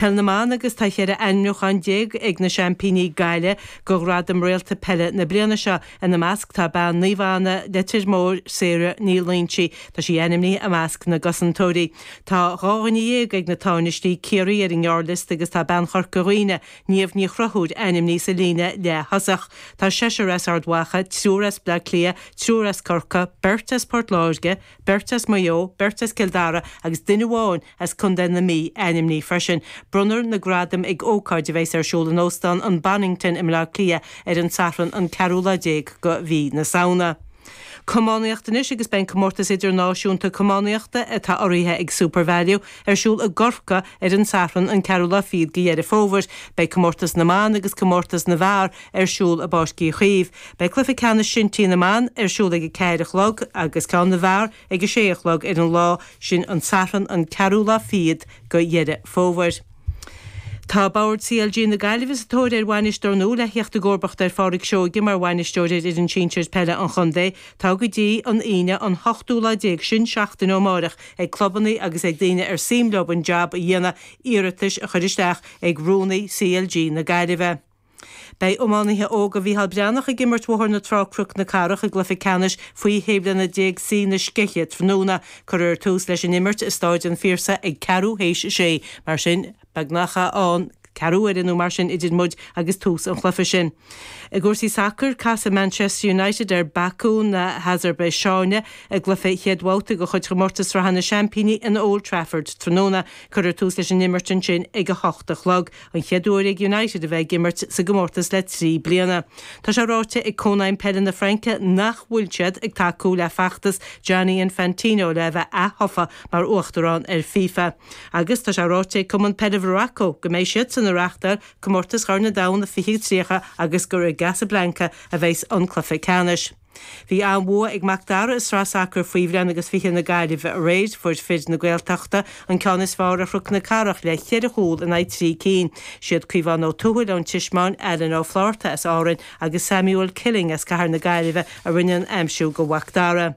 Peil na mBan agus tá cheithre ainmniúchán déag ag na seaimpíní, Gaillimh, go Ghradaim Réalta Peile na bliana seo. Ina measc tá bean Naomh Anna, Leitir Móir, Sarah Ní Loingsigh. Tá sí ainmnithe i measc na gcosantóirí. Tá dhá dhuine dhéag ag na tánaistí, Ciarraí, ar an ngearrliosta agus tá bean Chorca Dhuibhne, Niamh Ní Chonchúir, ainmnithe sa líne leath-thosach. Tá seisear as Ard Mhacha, triúr as Bleá Cliath, triúr as Corca, beirt as Port Láirge, Beirt as Maigh Eo, beirt as Cill Dara agus duine amháin as contae na Mí a ainmníodh freisin. Bronnfar na gradaim ag ócáid a bheas ar siúl in Óstán an Bonnington i mBleá Cliath ar an Satharn an ceathrú lá déag go Mhí na Samhna. Camánaíocht anois agus beidh an Comórtas Idirnáisiúnta Camánaíochta, atá urraithe ag SuperValu, Ar siúl i gCorca ar an Satharn an 4ú lá fichead go Dheireadh Fómhair. Beidh Comórtas na mBan agus Comórtas na bhFear ar siúl i bPáirc Uí Chaoimh. Beidh Cluiche Ceannais Shinty na mBan ar siúl ag a ceathair a chlog agus ceann na bhFear ag a sé a chlog ar an lá sin an Satharn an 4ú lá fichead go Dheireadh Fómhair. Tá Bord CLG na Gaillimhe sa tóir ar Bhainisteoir nua le theacht i gcomharbacht ar Phádraig Seoige mar Bhainisteoir ar fhoireann sinsir peile an chontae. Tá go dtí an Aoine an hochtú lá déag sin seachtain ó amárach ag clubanna agus ag daoine ar suim leo an jab a dhéanamh iarratais a chur isteach ag Rúnaí CLG na Gaillimhe. Beidh iománaithe óga Mhícheál Breathnach ag imirt Bhóthar na Trá-Cnoc na Cathrach i gcluiche ceannais faoi shé bliana déag C na Scéithe tráthnóna. Cuirfear tús leis an imirt i Stáid an Phiarsaigh ag ceathrú théis a sé. Mar sin. Beagnach ann ceathrú uaire nó mar sin idir muid agus tús an chluiche sin. I gcúrsaí sacair, casfaidh Manchester United ar Baku na hAsarbaiseáine i gcluiche chéad bhabhta de chuid Chomórtas Sraithe na Seaimpíní in Old Trafford tráthnóna. Cuirfear tús leis an imirt ansin ag a hocht a chlog, an chéad uair ag United a bheith ag imirt sa gcomórtas le trí bliana. Tá sé ráite ag Cónaidhm Peile na Fraince nach bhfuil siad ag tacú le feachtas Gianni Infantino le a bheith ath-thofa mar uachtarán ar FIFA. Agus tá sé ráite ag Cumann Peile Mharacó go mbeidh siadsan ag reáchtáil Comórtas Chorn an Domhain 2030 agus gur i gCasablanca a bheas an cluiche ceannais. Bhí an-bhua ag Mac Dara i Sraith Sacair Faoi Bhliain agus Fiche na Gaillimhe aréir. Fuair fir na Gaeltachta an ceann is fearr ar Chnoc na Cathrach le cheithre chúl in aghaidh trí cinn. Siad Caomhán Ó Tuathail ón Tismeáin, Alan Ó Flaithearta as Árainn agus Samuel Killing as Cathair na Gaillimhe a rinne an aimsiú go Mhac Dara.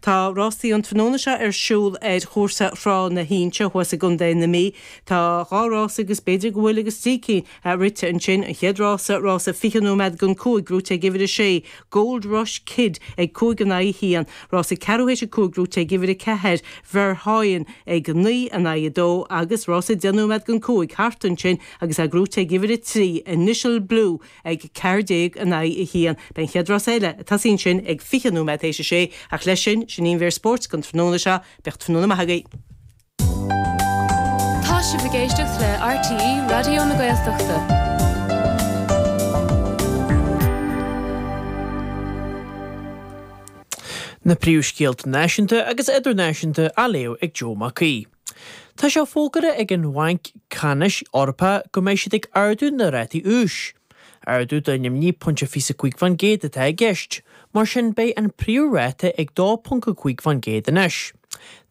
Tá rásaí an tráthnóna seo ar siúl ar chúrsa Thrá na hInse thuas i gContae na Mí. Tá dhá rása agus b'fhéidir go bhfuil agus trí cinn rite ansin. An chéad rása, rása 20 nóiméad gon cúig, buaite ag uimhir a sé, Gold Rush Kid ag cúig in aghaidh a haon. Rása ceathrú théis a cúig buaite ag uimhir a ceathair, Verhoyen ag naoi in aghaidh a dó agus rása deich nóiméad gon cúig thart ansin agus é buaite ag uimhir a trí, Initial Blue. ag ceathair déag in aghaidh a haon. Beidh an chéad rás eile, a tosaíonn sin ag fiche nóiméad tar éis a sé, ach leis sin, sin í an mhír spóirt don tráthnóna seo. Bíodh tráthnóna maith agaibh. Tá sibh ag éisteacht le RTÉ Raidió na Gaeltachta. Na príomhscéalta náisiúnta agus idirnáisiúnta á léamh ag Joe Mac Aoidh. Tá sé fógartha ag an Bhanc Ceannais Eorpach go mbeidh siad ag ardú na rátaí úis. Ardú de 0.25% atá i gceist, mar sin beidh an príomh ráta ag 2.5% anois.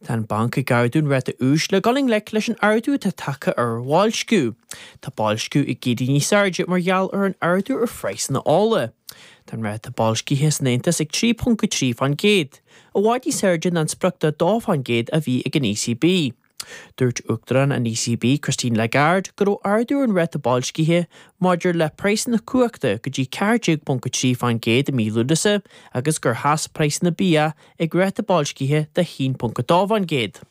Tá an banc ag ardú an ráta úis le dul i ngleic leis an ardú atá tagtha ar bhoilsciú. Tá boilsciú ag éirí níos airde mar gheall ar an ardú ar phraghsanna ola. Tá an ráta boilscithe san Aontas ag 3.3%. I bhfad níos airde ná an sprioc de 2% a bhí ag an ECB. Dúirt Uachtarán an ECB, Christine Lagarde, go raibh ardú ar an ráta boilscithe maidir le praghsanna cumhachta go dtí 14.3% i mí Lúnasa agus gur sheas praghsanna bia ag ráta boilscithe de 1.2%.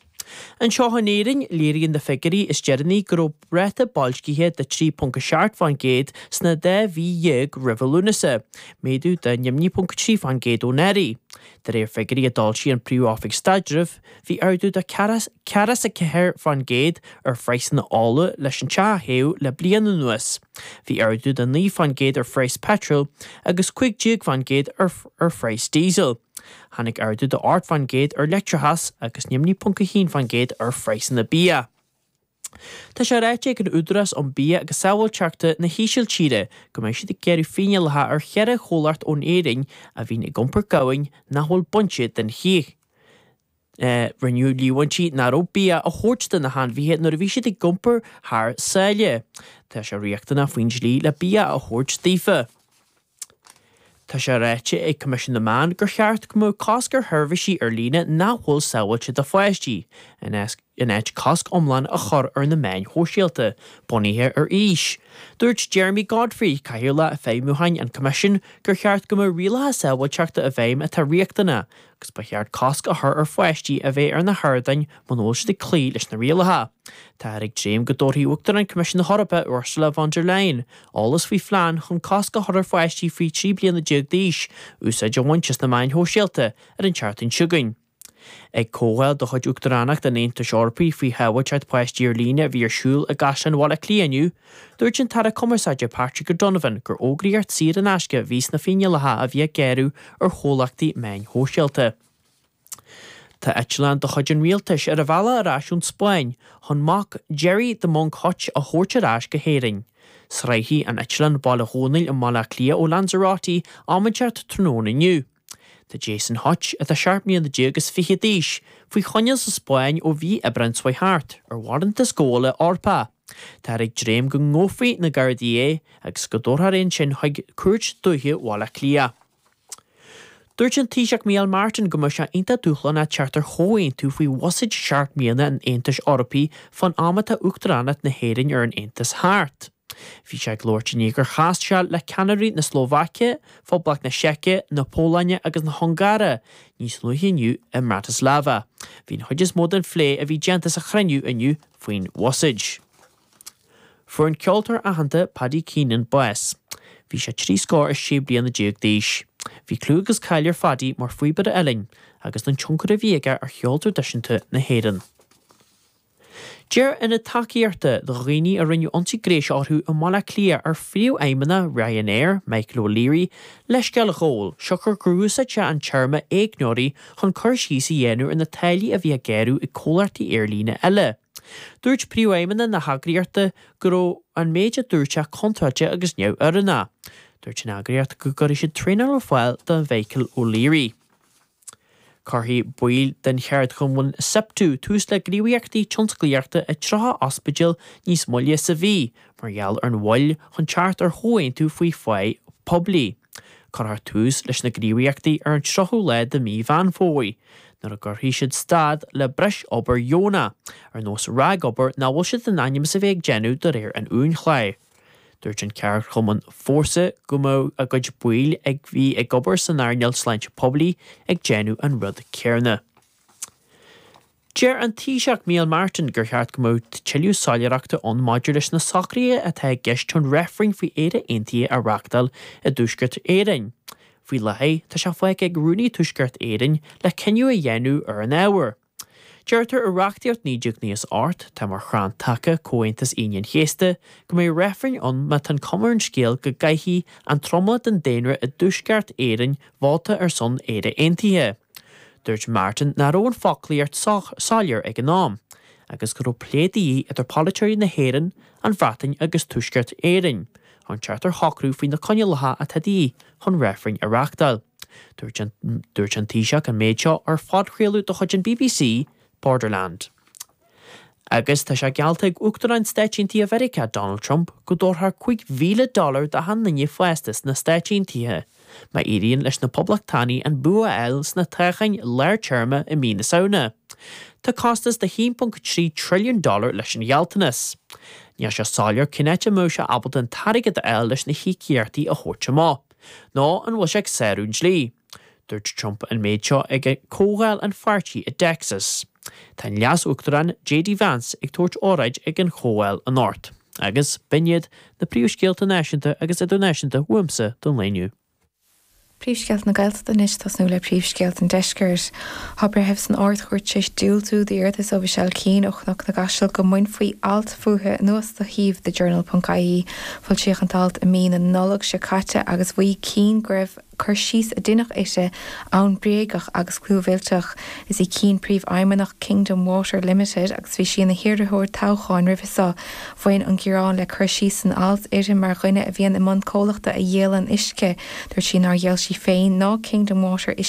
Anseo in Éirinn, léiríonn na figiúirí is deireanaí go raibh ráta boilscithe de 3.7 fán gcéad sna dá mhí dhéag roimhe Lúnasa, méadú de 0.3 fán gcéad ó anuraidh. De réir figiúirí a d'fhoilsigh an Príomh-Oifig Staidrimh, bhí ardú de ceathracha is a ceathair fán gcéad ar phraghsanna ola leis an teach a théadh le bliain anuas, bhí ardú de naoi fán gcéad ar phraghas peitril agus cúig déag fán gcéad ar phraghas díosail. Tháinig ardú de 8% ar leictreachas agus de 0.1% ar phraghsanna bia. Tá sé ráite ag an Údarás um Bia agus Sábháilteachta na hÍsiltíre go mbeidh siad ag gearradh fíneálacha ar cheithre chomhlacht ón Éirinn a bhíonn ag iompar gamhain nach bhfuil bainte den chíoch. Rinneadh líomhaintí nach raibh bia á thabhairt do na hainmhithe nuair a bhí siad ag iompar thar sáile. Tá sé riachtanach faoin dlí le bia a thabhairt daofa. Tá sé ráite ag Coimisiún na Meán gur cheart go mbeadh cosc ar sheirbhísí ar líne nach bhfuil sábháilte do pháistí, in áit cosc iomlán a chur ar na meáin shóisialta bunaithe ar aois. Dúirt Jeremy Godfrey, Cathaoirleach Feidhmiúcháin an Choimisiúin, gur cheart go mbeadh rialacha sábháilteachta i bhfeidhm atá riachtanach, agus ba cheart cosc a chur ar pháistí a bheith ar na hardáin muna bhfuil siad ag cloí leis na rialacha. Táthar ag dréim go dtabharfaidh Uachtarán Choimisiún na hEorpa, Ursula von der Leyen, eolas faoi phlean chun cosc a chur ar pháistí faoi 13 bliana d'aois úsáid a bhaint as na meáin shóisialta ar an tseachtain seo chugainn. Ag comhdháil de chuid Uachtaránacht an Aontais Eorpaigh faoi shábháilteacht páistí ar líne a bhí ar siúl i gCaisleán Bhaile Átha Cliath inniu, Dúirt an tAire Cumarsáide Patrick O'Donovan gur fógraíocht saor in aisce a bhí sna fíneálacha a bhí ag gearradh ar chomhlachtaí meáin shóisialta. Tá eitleán de chuid an rialtais ar a bhealach ar ais ón Spáinn chun mac Gerry the Monk Hutch a thabhairt ar ais go hÉirinn. Sroichfidh an eitleán Baile Dhónaill i mBaile Átha Cliath ó Lanzarote, am inteacht tráthnóna inniu. Tá Jason Hutch, atá 17 mbliana agus fiche d'aois, faoi choinneáil sa Spáinn ó mhí Aibreáin seo thart, ar bharántas gabhála Eorpach. Táthar ag dréim go ngabhfaidh na Gardaí é agus go dtabharfar é ansin chuig Cúirt Dúiche Bhaile Átha Cliath. Dúirt an Taoiseach Micheál Martin go mbeadh sé iontach dúshlánach teacht ar chomhaontú faoi bhuiséad seacht mbliana an Aontais Eorpaigh fán am atá Uachtaránacht na hÉireann ar an Aontas thart. Bhí sé ag labhairt i ndiaidh gur chas sé le ceannairí na Slóvaice, Phoblacht na Seice, na Pólainne agus na hUngáire níos luaithe inniu i mBratislava. Bhí an chuid is mó den phlé a bhí déanta sa chruinniú inniu faoin bhuiséad. Fuair an ceoltóir aitheanta Paddy Keenan bás. Bhí sé trí scór is sé bliana déag d'aois. Bhí clú agus cáil ar Phaddy mar phíobaire uillinn, agus don tionchar a bhí aige ar cheol traidisiúnta na hÉireann. D'iarr ionad tacaíochta do dhaoine a rinneadh ionsaí gnéis orthu i mBaile Átha Cliath ar phríomhfheidhmeannach Ryanair, Michael O'Leary, leithscéal a ghabháil, siocair gur úsáid sé an téarma 'éigneoirí' chun cur síos a dhéanamh ar na táillí a bhí á ngearradh ag comhlachtaí aerlíne eile. Dúirt príomhfheidhmeannach na heagraíochta go raibh an méid a dúirt sé contráilte agus neamhoiriúnach. Dúirt an eagraíocht go gcuirfidh siad traenáil ar fáil do Mhichael O'Leary. Cuirfidh baill den cheardchumann Siptu tús le gníomhaíochtaí tionsclaíochta i 30 ospidéal níos moille sa mhí mar gheall ar an mhoill chun teacht ar chomhaontú faoi phá poiblí. Cuirfear tús leis na gníomhaíochtaí ar an 30ú lá de mhí Mheán Fómhair, nuair a gcuirfidh siad stad le breis obair dheonach, ar nós ragobair nach bhfuil siad in ainm is a bheith ag déanamh de réir an uainchláir. Dúirt an ceardchumann Fórsa go mbeadh a gcuid baill a bhí ag obair san earnáil sláinte poiblí ag déanamh an rud céarna. Deir an Taoiseach Micheál Martin gur cheart go mbeadh tuilleadh soiléireachta ann maidir leis na socruithe atá i gceist chun reifreann faoi Éire Aontaithe a reachtáil i dTuaisceart Éireann. Faoi láthair, tá sé fágtha ag Rúnaí Thuaisceart Éireann le cinneadh a dhéanamh ar an ábhar. Deirtear i reachtaíocht 1998, atá mar chrann taca Comhaontas Aoine an Chéasta, go mbeidh reifreann ann má tá an cuma ar an scéal go gcaithfidh an tromlach den daonra i dTuaisceart Éireann vóta ar son Éire Aontaithe. Dúirt Martin nach raibh an foclaíocht sách soiléir ag an am, agus go raibh plé de dhíth idir polaiteoirí na hÉireann, an Bhreatain agus Tuaisceart Éireann, chun teacht ar shocrú faoi na coinniollacha atá de dhíth chun reifreann a reachtáil. Dúirt an Taoiseach an méid seo ar phodchraoladh de chuid an bbc, Borderland. Agus tá sé geallta ag Uachtarán Stáit Aontaithe Mheiriceá, Donald Trump, go dtabharfar cúig mhíle dollar d'achan duine fásta sna Stáit Aontaithe má éiríonn leis na Poblachtánaigh an bua a fháil sna toghcháin lár téarma i mí na Samhna. Tá costas de 1.3 trilliún dollar leis an ghealltanas. Níl sé soiléir cén áit a mbeadh sé ábalta an t-airgead a fháil leis na híocaíochtaí a thabhairt amach. Nó an bhfuil sé ag sárú an dlí? Dúirt Trump an méid seo ag comhdháil an pháirtí i dTexas. Tá an Leas-Uachtarán JD Vance ag tabhairt óráid ag an chomhdháil anocht. Agus, b'in iad na príomhscéalta náisiúnta agus idirnáisiúnta uaimse don lá inniu. Príomhscéalta na Gaeltachta anois, tosnú le príomhscéalta an deiscirt. Tá breitheamh san Ard-Chúirt tar éis diúltú d'iarratas ó Mhichelle Keane ó Chnoc na gCaiseal go mbainfí alt fúithi anuas de shuíomh The Journal. ie. Foilsíodh an t-alt i mí na Nollag seo caite agus mhaígh Keane go raibh cur síos a deineadh uirthi ann bréagach agus clúmhillteach. Is í Keane príomhfheidhmeannach Kingdom Water Limited agus bhí sí ina hiarrthóir toghcháin roimhe seo. Bhain an gearán le cur síos san alt uirthi mar dhuine a bhíonn i mbun comhlachta a dhíolann uisce. Dúirt sí nár dhíol sí féin ná Kingdom Water uisce.